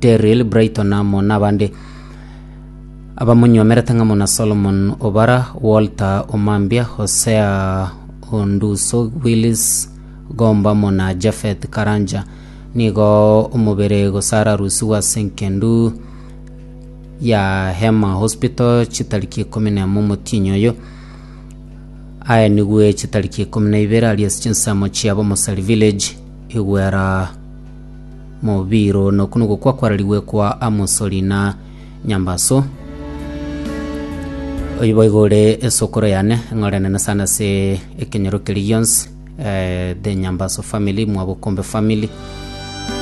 Terril, Brighton amo nabande abamonyomerete ng'amo na Solomon Obara, Walter Omambia, Hosea Onduso, Willis Gomba amo na Japhet Karanja. Nigo omobere gosara rusiwa ase enkendu ya Hema Hospital chitariki ikomi na emo omotienyi oyo aenigwe chitariki ikomi na ibere aria ase chinsemo chiabo Mosari Village, Igwera Mobiiro, na oku nogokwa kwararigwe kwa Amosori na Nyambaso. Oyo boigo ore esokoro yane, ng'orenene sana ase ekenyoro keria gionsi, eh, the Nyambaso family, Mwabokombe family.